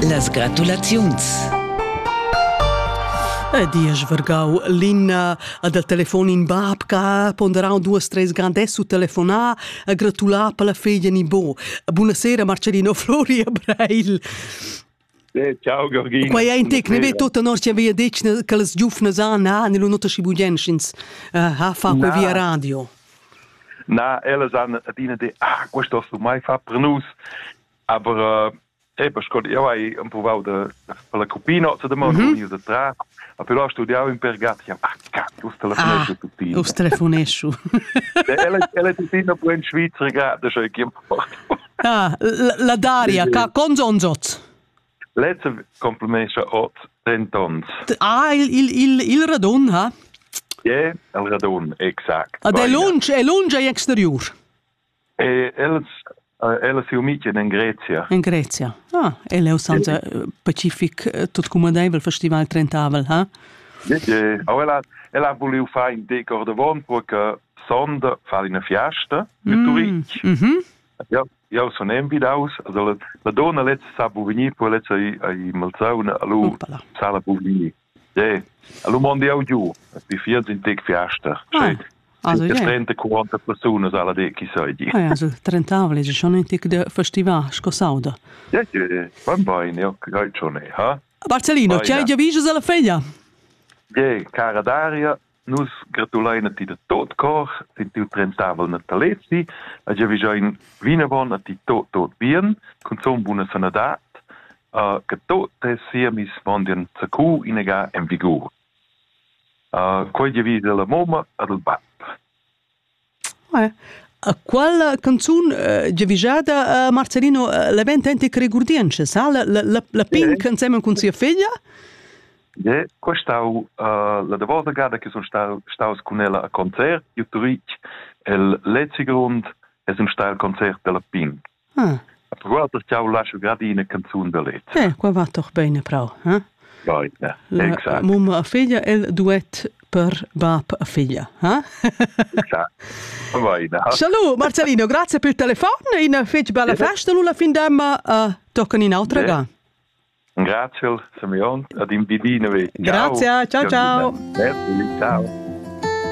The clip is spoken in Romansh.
Las gratulaziuns e diesch vargau linna ad al telefon in bab che ha ponderau duas treis grandesso telefonar a gratular per la feglia ni bo. Buonasera Marcellino Flori a Breil. Eh, ciao Georgina. Quai è in tecnico, ve tutta nostra via detg che les giufnas han, ha, nell'unota schibugenschins, ha fa per via radio. Na, ellas han adina de ah, questo hast du mai fatto per nus. Aber äh, eben, ich konnte ja ei emprovau de per la cupino zu de mon mm -hmm. de tra. A però studiau in Pergati, ja, ach, cacchio, us telefonesco ah, tutti. Us telefonesco. Ella è tuttina pure in Svizzera, grande, cioè chi Ah, la Daria, ca conzonzot. Lez complemescha ot dentonts. Ah, il, il, il, il radun, ha? Yeah, el radun, exact. Ad è lunsch, è lunsch e exterior? E els, ella si umicen in Grezia. In Grezia. Ah, ella è usanza yeah. pacific, tot comodaivel festival trentavel, ha? Yeah, yeah. Aber ella, ella ha voulu fare in decor de von, perché sonda fa una fiesta mit mm, turist. Mm -hmm. Ja, Jau sun envidaus ad ella. La donna lezza sa bu vegnir, poi lezza ei, ei malsauna, allo Upala. sala bu vegnir. De, allo mondi jau giu, vi fiat in tec fiasta. Ah. Also, ja. 30 40 persone alla de chi sai di. Ah, ja, so 30 vlegge schon ein tic de festival sco sauda. Ja, van bain, ja, kai schon, ha? Barcellino, c'è già viso della figlia? De, cara Daria, Nus gratulein a ti da tot cor sin tiu trentavel natalezi e giavischein vinavon a ti tot tot bien, cunzun buna sanadad, uh, che tot tes siemis mondian zacu inaga en vigur. Uh, quei giavis alla mamma ed al bab. Quella canzun giavischada Marcelino l'event enti che regurdientscha sa la la la pink ensemen cun sia figlia Ne, qua stau la davosa gada che sun staus cun ella a concert, io tuich el lezi grund es un stai al concert della Pink. Ah. Guarda jau lascio grad ina canzun da let. Eh, qua va doch bene prau. Eh? Goita, exact. Mumma a figlia, il duet per bab a figlia. Eh? Exact. Va bene. Salut Marcellino, grazie per il telefono, una fece bella festa, Lula Findemma, uh, toccano in altra ga. Grazie Simeon, ad in bidine. Grazie, ciao ciao. Ciao. ciao.